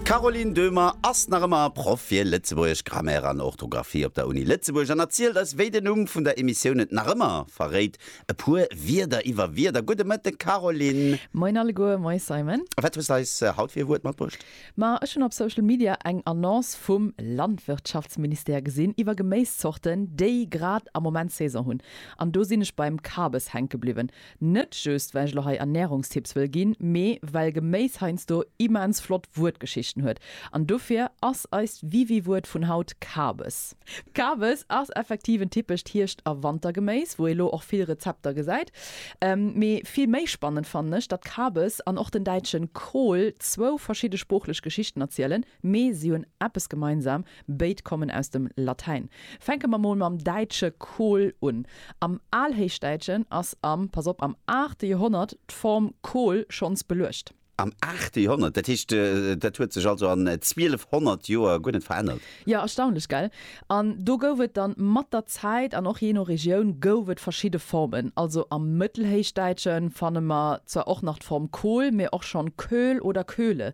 D'Caroline Döhmer ass nach ëmmer Proff fir Lëtzebuergesch, Grammaire an Orthografie op der Uni Lëtzebuerg an erzielt eis, wéi den Numm vun der Emissioun et nach ëmmer verréit, e puer Wierder iwwer Wierder. Gudde Mëtten, Caroline! Moin alleguer, moin Simon! A wat hues de eis haut fir e Wuert matbruecht? Ma ech hunn op Social Media eng Annonce vum Landwirtschaftsministère gesinn iwwer Geméiszorten, déi grad am Moment Saison hunn. An do sinn ech beim Kabes hänke bliwwen. Net just well ech lo hei Ernährungstipps wëll ginn, mee well Geméis heiansdo immens flott Wuertgeschichten huet. An dofir ass eist Wiwi-Wuert vun haut Kabes. Kabes ass effektiv en typescht Hierscht a Wantergeméis, wou ee lo och vill Rezepter gesäit. Mee vill méi spannend fannen ech, datt Kabes an och den däitschen Kohl zwou verschidde sproochlech Geschichten erzielen. Mee si hunn eppes gemeinsam, béid kommen aus dem Latäin. Fänke mer mol mam däitsche Kohl un. Am Alhéichdäitschen ass am, pass op, am aachte Joerhonnert d'Form Kohl schonns beluecht. Am aachte Joerhonnert? Dat heescht, dat huet sech also an 1200 Joer guer net verännert? Jo, erstaunlech, gell? An do gouf et dann mat der Zäit, an och jee no Regioun, gouf et verschidde Formen. Also am Mëttelhéichdäitsche fanne mer zwar och nach d'Form Kohl, mee och schonn Köhl oder Köhle.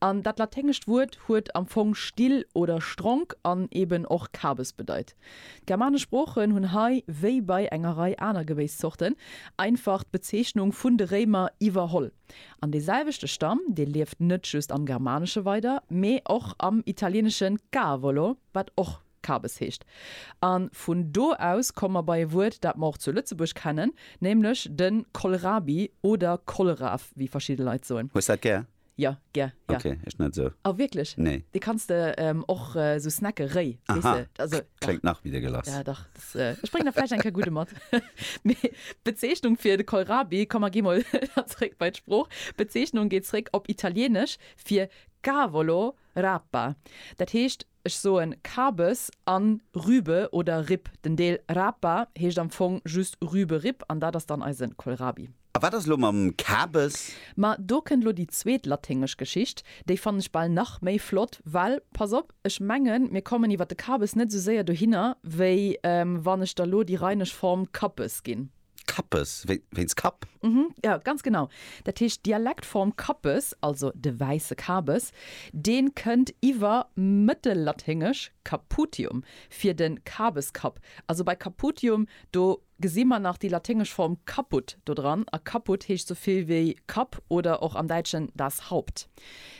An dat laténgescht Wuert huet am Fong still oder stronk an eben och Kabes bedeit. D'germanesch Sproochen hunn hei, wéi bei enger Rei aner Gebéisszorten, einfach d'Bezeechnung vun de Réimer iwwerholl. An dee selwechte Stamm, dee lieft net just am Germanesche weider, mee och am Italienesche cavolo, wat och Kabes heescht. A vun do aus komme mer bei e Wuert, dat mer och zu Lëtzebuerg kennen, nämlech de Kohlrabi oder Kohlraaf, wéi verschidde Leit soen. Hues dat gär? Jo, gär, jo. Ok, ech net esou. Oh, wierklech? Nee. Dee kanns de och esou snacken, réi, weess de. Also, dach. Kléngt nach méi dégueulasse. Ja, dach. Ech bréngen der vläicht eng Kéier gudde mat. Mee d'Bezeechnung fir de Kohlrabi, komm mer gi mol da zréck bei d'Sprooch, d'Bezeechnung geet zréck op Italieenesch fir Cavolo, Rapa. Dat heescht. Ech soen Kabes an Rübe oder Ripp. Den Deel Rapa heescht am Fong just Rübe-Ripp an dat ass dann eisen Kohlrabi. A wat ass elo mam Kabes? Ma do kënnt elo déi zweet laténgesch Geschicht. Déi fannen ech bal nach méi flott, well pass op, ech mengen mir kommen iwwer de Kabes net esou séier dohinner wéi wann ech der elo déi rheinesch Form Kappes ginn. Kappes, wéinst Kapp? Mhm, jo, ganz genau. Dat heescht, d'Dialektform Kappes, also de wäisse Kabes, dee kënnt iwwer Mëttellaténgesch caputium fir de Kabeskapp. Also bei caputium, do gesi mer nach déi laténgesch Form caput dodran, a caput heescht esou vill wéi Kapp oder och am Däitschen das Haupt.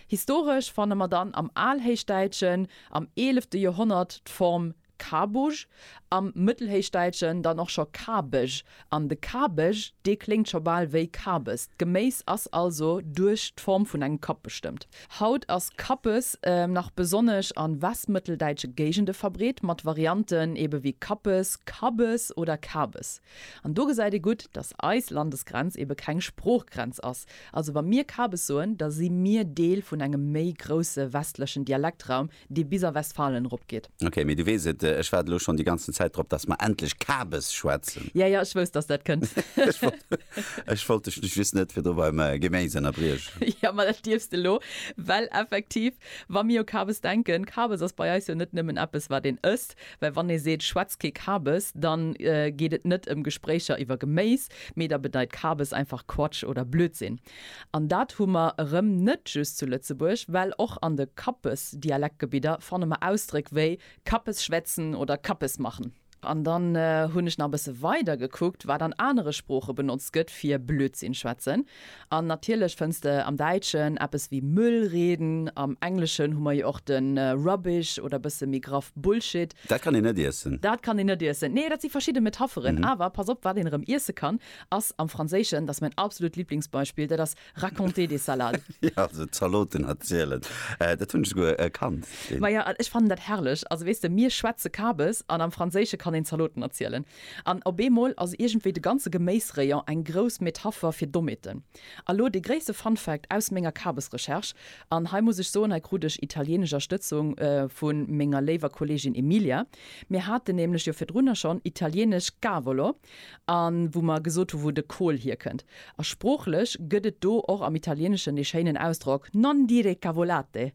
Historesch fanne mer dann am Alhéichdäitschen am eelefte Joerhonnert d'Form Kabug, am Mëttelhéichdäitschen dann och scho Kabeg, an de Kabeg, dee kléngt scho bal wéi Kabes. D'Geméis ass also duerch d'Form vun engem Kapp bestëmmt. Haut ass Kappes nach besonnesch a westmëtteldäitsche Géigende verbreet, mat Varianten ebe wéi Kappes, Kabbes oder Kabes. An do gesäit ee gutt, datt eis Landesgrenz ebe keng Sproochgrenz ass. Also wa mir Kabes soen, da si mir Deel vun engem méi grousse westlechen Dialektraum, dee bis a Westfalen eropgeet. Ok, mee du weess et, ech waart elo schonn déi ganzen Zäit drop, dass mer endlech Kabes schwätzen. Ja, ja, ech wousst, dass dat kënnt. Ech wollt dech just net virdru beim Geméis ënnerbriechen. Jo, ma dat dierfs de elo, well effektiv, wa mir u Kabes denken, Kabes ass bei eis jo net nëmmen eppes, wat een ësst, well wann ee seet, schwätz kee Kabes, da geet et net ëm Gespréicher iwwer Geméis, mee da bedeit Kabes einfach Quatsch oder Blödsinn. An dat hu mer erëm net just zu Lëtzebuerg, well och an de Kappes-Dialektgebidder fanne mer Ausdréck wéi Kappes schwätzen oder Kappes machen. An dann hunn ech nach e bësse weider gekuckt, wat an anere Sprooche benotzt gëtt fir Blödsinn schwätzen. An natierlech fënns de am Däitschen eppes wéi Müll reden. Am Engleschen hu mer jo och de Rubbish oder bësse méi graff Bullshit. Dat kann een net iessen. Dat kann een net iessen. Nee, dat si verschidde Metapheren. Awer pass op, wat een erëm iesse kann. Ass am Franséischen, dat ass mäin absolut Liblingsbeispill, dat ass raconter des salades. Jo, also Zaloten erzielen, dat hunn ech souguer kannt. Maja, an ech fannen dat herrlech. Also weess de, mir schwätze Kabes an am Franséische kann een Zaloten erzielen. An op eemol ass iergendwéi de ganze Geméisrayon eng grouss Metapher fir Dommheeten. A lo dee gréisste Fun Fact aus menger Kabesrecherche, an hei muss ech soen, hei krut ech italienesch Erstëtzung vu menger léiwer Kollegin Emilia, Mir haten nämlech jo virdrunner schonn italienesch cavolo. a wou mer gesot hu wou de Kohl hierkënnt. A sproochlech gëtt et do och am Italieeneschen dee schéinen Ausdrock non dire cavolate.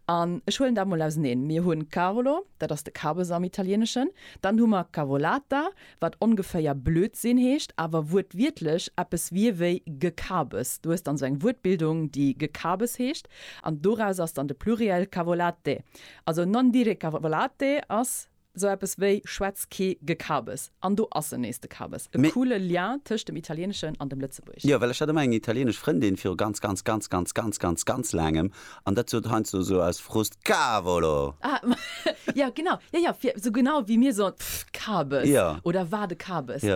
An ech huelen dat mol auseneen, Mir hunn cavolo, dat ass de Kabes am Italieeneschen, dann hu mer cavolata, wat ongeféier Blödsinn heescht, awer wuertwiertlech eppes wier wéi Gekabes. Du hues dann esou eng Wuertbildung, déi Gekabes heescht, an doraus ass dann de Pluriel cavolate. Also non dire cavolate ass Sou eppes wéi Schwätz ké Gekabes an do ass en nees de Kabes. E coole Lien tëscht dem Italieneschen an dem Lëtzebuerg. Jo, well ech hat emmer eng italienesch Frëndin viru ganz, ganz, ganz, ganz, ganz, ganz, ganz laangem an dat sot heiansdo esou aus Frust Cavolo! Ah, jo genau, jo jo, fir esou genau wéi mir soen, pff, Kabes! Oder war de Kabes!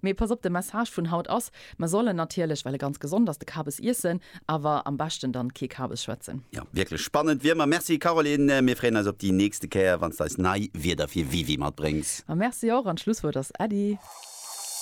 Mee pass op, de Message vun haut ass, mer sollen natierlech, well e ganz gesond ass, de Kabes iessen, awer am beschten dann kee Kabes schwätzen. Jo, wierklech spannend wi emmer. Merci Caroline, mir freeën eis op di nächste Kéier wanns de eis nei Wierder fir WiWi matbréngs. Merci och, an d'Schlusswuert ass Äddi.